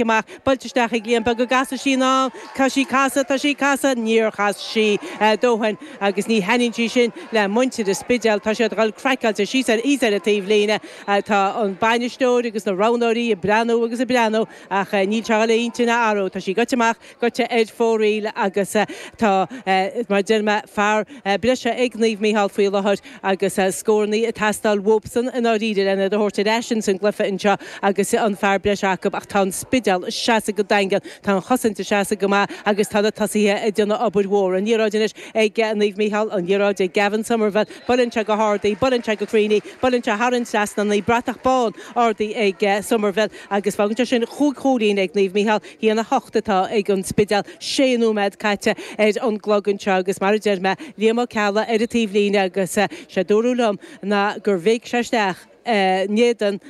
amach, buailte isteach ag Liam, b'fhéidir go gcasfadh sí anall, tá sí casadh, tá sí casadh, níor chas sí a dóthain agus ní thaitníonn sí sin le muintir an Spidéil, tá siad dhul craiceáilte síos ar, thíos ar an taobh líne, tá an bainisteoir agus na roghnóirí ag breathnú agus ag breathnú ach níl sé dhul a hintinn a athrú, tá sí goite amach. Goite ar fóraoil agus tá, mar a deir mé, fear breise ag Naomh Micheál faoi láthair agus scórannaí ag teastáil uathusan i ndáiríre lena dtabhairt ar ais insan gcluiche anseo agus an fear breise acu ach tá an Spidéal ag seasamh go daingean, tá an chosaint ag seasamh go maith agus tá na tosaithe ag déanamh obair mhór. An liathróid anois ag Naomh Micheál, an liathróid ag Gavin Somerville, buailte go hard í, buailte go cruinn í, buailte thar an trasnán í, bratach bán ardaithe ag Somerville agus fágann sé sin chúig chúilín ag Naomh Micheál. A haon a hocht atá ag an Spidéal, sé nóiméad caite ar an gclog anseo agus mar a deir mé, Liam Ó Ceallaigh ar an taobh líne agus sé a dúradh liom ná gur bhéic sé isteach in éadan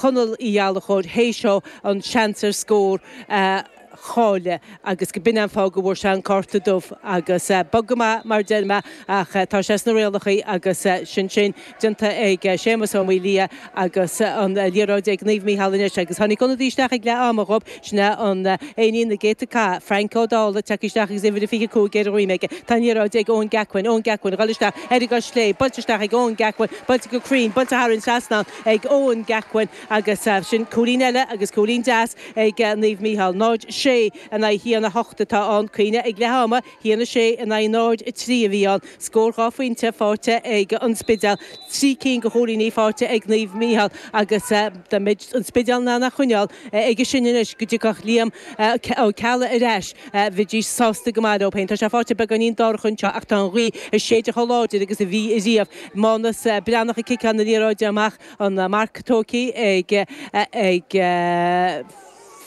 Chonaill Uí Ghallachóir théis dó an seans ar scór a cháilleadh agus go b'in an fáth go bhfuair sé an cárta dubh agus bog go maith mar a deir mé ach tá sé sna rialacha agus sin sin. déanta ag Séamus Ó Maolaodha agus an liathróid ag Naomh Mícheál anois agus tháinig ionadaí isteach ag leath ama dhób, sin é an duine na gcéadta cath, Frank Ó Dálaigh, tagtha isteach agus uimhir a 25 ar a dhroim aige. Tá an liathróid ag Eoin Gackwin, Eoin Gackwin, a dhul isteach ar an gcois chlé, buailte isteach ag Eoin Gackwin, buailte go cruinn, buailte thar an trasnán ag Eoin Gackwin agus sin cúilín eile agus cúilín deas ag Naomh Mícheál. 0, 6 in aghaidh 1, 8 atá ann, cuimhnigh ag leath ama. 1-6 in aghaidh 0-3 a bhí ann, scór dhá phointe faighte ag An Spidéal, trí cinn de chúilíní faighte ag Naomh Micheál agus dá mbeadh An Spidéal in ann a choinneáil aige sin anois go dtiocfadh Liam Ó Ceallaigh ar ais, bheidís sásta go maith leob féin. Tá sé faighte beagáinín dorcha anseo ach tá an ghaoth ag séideadh chomh láidir agus a bhí riamh. Mánus Breathnach ag ciceáil na liathróide amach, an marc tógtha ag.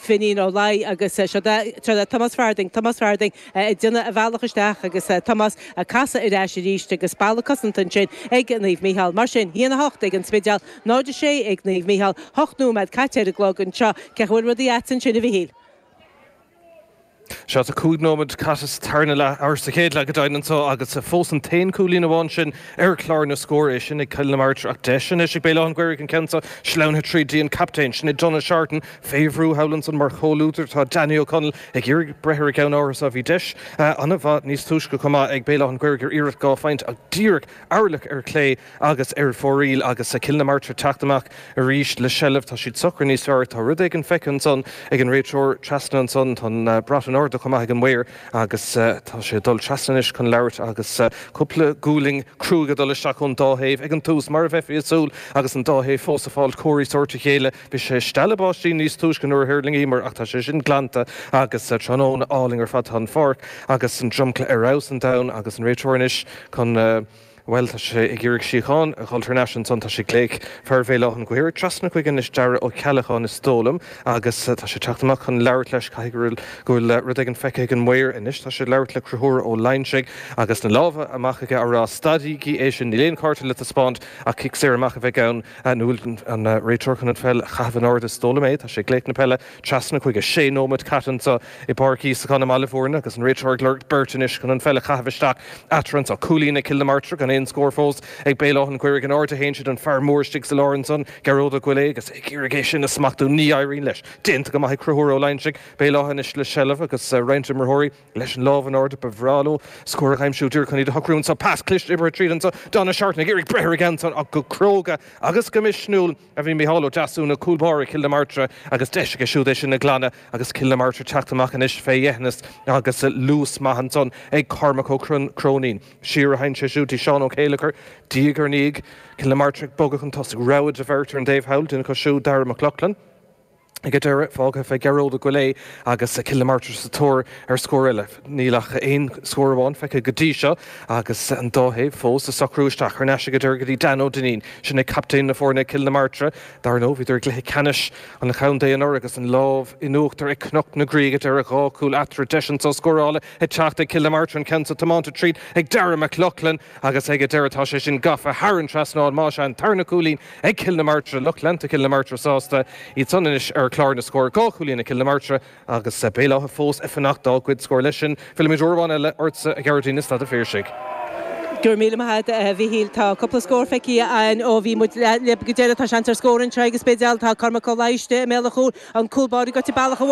Finín Ó Laoi agus seo é Tomás Farthing, Tomás Farthing ag déanamh a bhealach isteach agus Tomás ag casadh ar ais arís agus balla cosanta ansin ag Naomh Micheál. Mar sin, 1-8 ag An Spidéal, 0-6 ag Naomh Micheál, hocht nóiméad caite ar an gclog anseo. Cé chaoi bhfuil rudaí agat ansin, a Mhichíl? Sea, tá cúig nóimead caite sa tarna leath, or sa chéad leath go deimhin, anseo agus fós an t-aon cúilín amháin sin ar chlár na scór, é sin ag Cill na Martra ach deis anois ag Béal Átha'n Ghaorthaidh an ceann seo sleamhnaithe tríd dtí an captaen, sin é Donagh Seártan, fé bhrú ar chúl ansan mar chomhluadar atá Danny O Connell ag iarraidh breith ar an gceann áfach. Bhí deis an-mhaith níos túisce chomh maith ag Béal Átha'n Ghaorthaidh ar iarracht dhá phointe ach díreach amuigh ar chlé, agus ar fóraoil agus Cill na Martra teacht amach arís le seilbh. Tá siad socair níos fearr. Tá rud éigin feicthe ansan ag an réiteoir trasna ansan. Tá an brat in airde chomh maith ag an maor agus tá sé ag dul trasna anois chun labhairt agus cúpla gualainn cruaidh ag dul isteach ón dá thaobh. Ag an tús, mar a bheifí ag súil agus an dá thaobh fós ag fáil comharthaí sóirt a chéile, bhí sé stealladh báistí níos túisce nuair a thuirlingíomar ach tá sé sin glanta agus tráthnóna álainn ar fad. Tá an pháirc agus an dromchla ar fheabhas an domhain agus an réiteoir anois chun. Bhuel, tá sé ag iarraidh síocháin a dh'fháil thar n-ais ansan. Tá sé ag glaoch fear Bhéal Átha'n Ghaorthaidh trasna chuige anois, Daire Ó Ceallacháin is dóigh liom, agus tá sé ag teacht amach chun labhairt leis. Caithfidh go bhfuil rud éigin feicthe ag an maor anois. Tá sé ag labhairt le Conchúr Ó Loingsigh agus na lámha amach aige á rá, Stadaigí é sin, níl aon chárta le taispeáint ach cic saor amach a bheidh ann. An bhfuil an réiteoir chun an pheil a chaitheamh in airde? Is dóigh liom é. Tá sé ag glaoch na peile. Trasna chuige. Sé nóimeat caite anseo i bPáirc Íosagáin i mBaile Bhúirne agus an réiteoir ag lorg beirt anois chun an pheil a chaitheamh isteach eatarthu anseo. Cúilín ag Cill na Martra gan aon scór fós ag Béal Átha'n Ghaorthaidh in airde a théann siad, an fear mór istigh sa lár ansan, Gearóid Ó Goillidhe, agus é ag iarraidh é sin a smachtú. Ní éiríonn leis. Déanta go maith ag Conchúr Ó Loingsigh. Béal Átha anois le seilbh agus roinnt imreoirí leis an lámh in airde. Ba bhreá leo scór a aimsiú díreach chun iad a shocrú anseo. Pas cliste oibrithe tríd anseo. Donagh Seartan ag iarraidh breith ar an gceann san ach go cróga agus go misniúil. a bhí Micheál Ó Deasúna, cúl báire Chill na Martra agus deis aige siúd é sin a ghlanadh agus Cill na Martra teacht amach anois fé dheithneas agus luas maith ansan ag Cormac Ó Cróinín. Siar a théann sé siúd dtí Seán Ó Céilleachair, diaidh ar ndiaidh, Cill na Martra ag bogadh chun tosaigh, rogha de bheirt ar an dtaobh thall, duine acu so Daire Mac Lochlainn. Ag an deireadh, fágtha fé Gearóid Ó Goillidhe agus Cill na Martra sa tóir ar scór eile. Níl ach aon scór amháin feicthe go dtí seo agus an dá thaobh fós le socrú isteach. Thar n-ais ag an deireadh go dtí Dan Ó Duinnín. Sin é captaen na foirne, Cill na Martra. Dar ndóigh, bhíodar i gcluiche ceannais an chontae anuraidh agus an lámh in uachtar ag Cnoc na Graí ag an deireadh, dhá chúl eatarthu. Deis anso scórála ag teacht ag Cill na Martra, an ceann so tiomáinte tríd ag Daire Mac Lochlainn agus ag an deireadh tá sé sin gafa thar an trasnán, más ea, an tarna cúilín ag Cill na Martra, lucht leanta Chill na Martra sásta, iad san anois ar chlár na scór. Dhá chúilín ag Cill na Martra agus Béal Átha fós ag fanacht dá gcéad scór. Leis sin, fillimid uair amháin eile ortsa, a Ghearóidín, i Staid an Phiarsaigh. Go raibh míle maith agat, a Mhichíl. Tá cúpla scór feicthe againn ó bhí muid libh go deireanach. Tá seans ar scór anseo ag an Spidéal. Tá Cormac Ó Laidhe istigh i mbéal an chúil, an cúl báire gaibhte bealach abhaile.